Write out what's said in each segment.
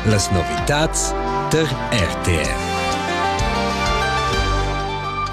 Las novitads tar RTR.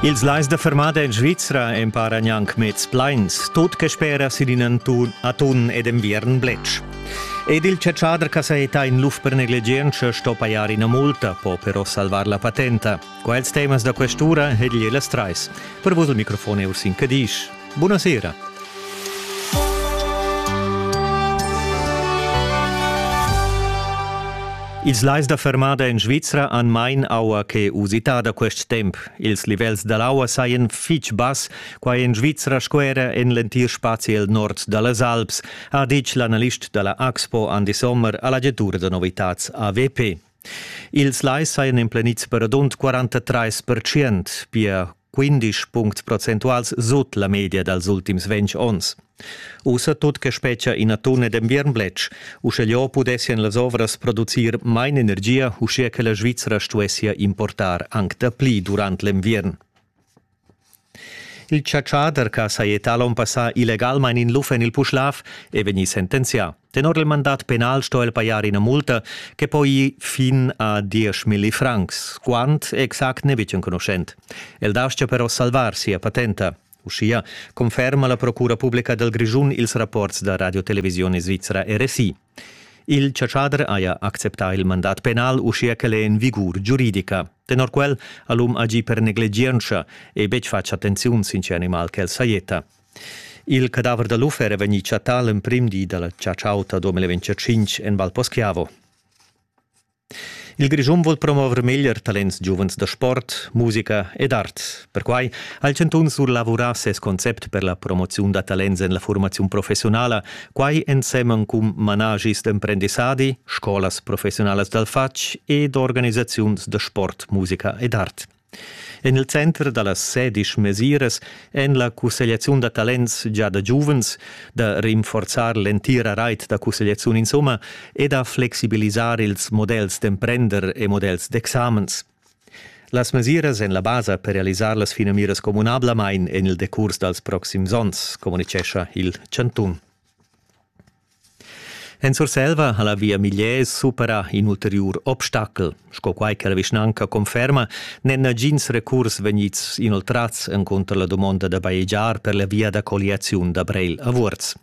Ils lais da fermada en Svizra emparan anc mez plains, tut che spera sin in atun ed enviern bletsch. Ed il chatschader che sa etta in luf per negligientscha sto pajar ina multa, po però salvar la patenta. Quels temas da questura egli las trais. Per vos il microfon è Ursin Cadisch. Bunasera. Ils lais da fermada en Svizra han main aua che usitada quest temp. Ils livels da l'aua sajan fitg bass, quai en Svizra sco era en l'entir spazi el nord da las Alps, ha ditg l'analist da la Axpo Andy Sommer a l'agentura da novitads AWP. Ils lais sajan emplenids per radund 43%, pia 15 punct procentuals sut la media dals ultims 20 onns. Ussa tut che spetgia ina tuna d'enviern bletsch, uscheliò pudessian las ovras producir main energia, uschia che la Svizzera stuessia importar anc dapli durant l'enviern. Il chatschader che ha sajettà l'onn passà illegalmain in luf en il Puschlav è vegnì sentenzià. Tenor il mandat penal sto el pajar ina multa che po ir fin a dieschmilli francs, quant exact n'è betg enconuschent. El dastgia però salvar sia patenta. Uschia conferma la Procura publica dal Grischun ils rapports da Radiotelevisione Svizra RSI. Il chatschader haja acceptà il mandat penal uschia ch'el è en vigur giuridica. Tenor quel ha l'um agì per negligientscha e betg fatg attenziun sin tge animal ch'el sajetta. Il cadaver da l'uffer è vegnì chattà l'emprim di da la chatsch'auta 2025 en Val Poschiavo. Il Grischun vul promover meglier talents giuvens da sport, musica ed art. Perquai ha il chantun surlavurà ses concept per la promoziun da talents en la formaziun professionala, quai ensemen cun managis d'emprendissadi, scolas professionalas dal fatg ed organisaziuns da sport, musica ed art. En il center da las sedisch mesiras èn la cussegliaziun da talents gia da giuvens, da rinforzar l'entira rait da cussegliaziun insomma e da flexibilisar ils models d'emprender e models d'examens. Las mesiras èn la basa per realisar las finamiras communablamain en il decurs dals proxims onns, communitgescha il chantun. En Surselva ha la via Migliez supera in ulteriur obstacel. Sco quai che la vischnanca conferma, n'èn nagins recurs vegnids inoltrads encunter la dumonda da bajegiar per la via da colliaziun da Breil a Vuorz.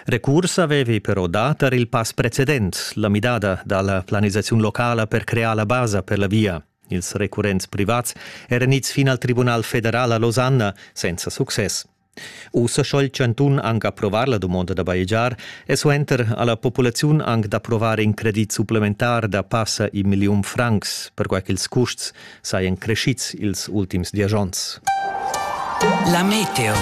Recurs avevi però dà tar il pass precedent, la midada da la planisaziun locala per crear la basa per la via. Ils recurrents privats eran ids fin al Tribunal federal a Losanna senza success. Ussa sco il chantun anc approvar la dumonda da bajegiar e suenter ha la populaziun anc d'approvar in credit supplementar da passa in milliun francs, perquai ch'ils custs sajan creschids ils ultims diesch onns. La meteo.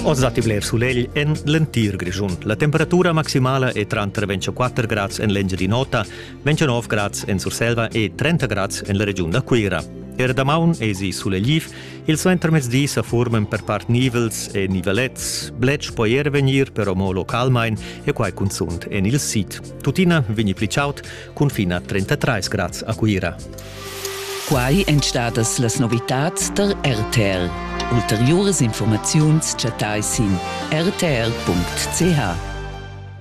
Oz datti bler sulegl en l'entir Grischun. La temperatura maximala è tranter 24 grads en l'Engiadin'Ota, 29 grads en Surselva e 30 grads en la regiun da Cuira. Er damaun èsi sulegliv Il suentermezdi sa furman per part nivels e nivelets, bletsch po er vegnir però mo localmain e quai cunzunt en il sid. Tuttina vegni pli chaud cun fin a 33 grads a Cuira. Quai èn stadas las novitads tar RTR. Ulteriuras informaziuns chattai sin rtr.ch.